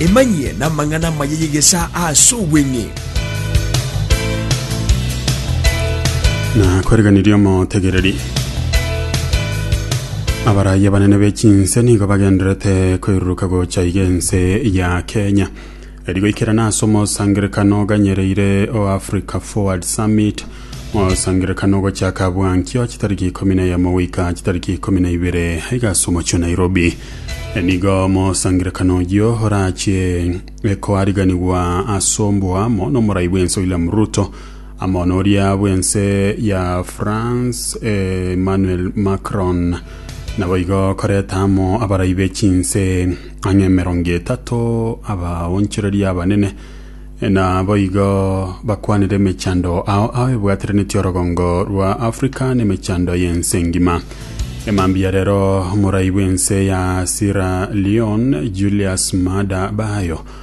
Emanyie namang'ana amaya y'egesaa ase obweng'e. Nakoriganirie omotegereri. Abaraia banene be chinse nigo bagenderete koiruruka gocha iga ense ya Kenya. Riria goikerana ase omosangererekano oganyereire o Africa Forward Summit, mosangererekano ogochaka abwo ankio chitariki ikomi na eyemo goika chitariki ikomi na ibere aiga ase omochie o Nairobi. Nigo mosangererekano oyio orachie koariganigwa ase oboamo n'omorai bw'ense William Ruto amo noria bw'ense ya France Emmanuel Macron. Naboigo koreta amo abarai b'echinse Ang'e emerongo etato abaonchoreria abanene naboigo bakwanire emechando ao ao ebwateranetie orogongo rwa Afrika n'emechando y'ense engima. Emambia rero omorai bw'ense ya Sierra Leone Julius Maada Bio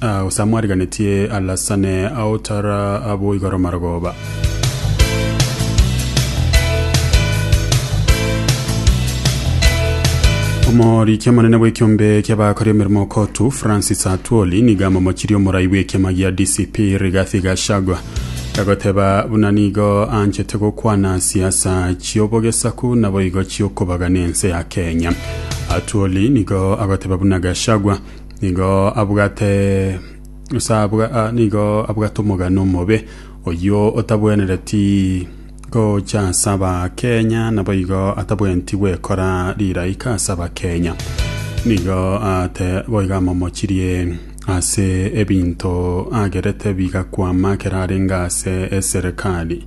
Ah, gose amwariganetie alasane ao tara abo igoro marogoba. Omoriki omonene bw'ekiombe ki'abakori emeremo Kotu Francis Atwoli niga amomochirie omorai bw'ekiama gia DCP Rigathi Gachagua agoteba buna nigo anchete gokwana siasa chiobogesaku naboigo chiokobagana ense ya Kenya. Atwoli nigo agoteba buna Gachagua Nigo abwate ase abwa- ah, nigo abwate omogano omobe oyio otabwenereti gocha ase abakenya naboigo atabwenti gwekora riraika ase abakenya nigo ate boigo amomochirie ase ebinto agerete bigakwama ekero arenge ase eserekari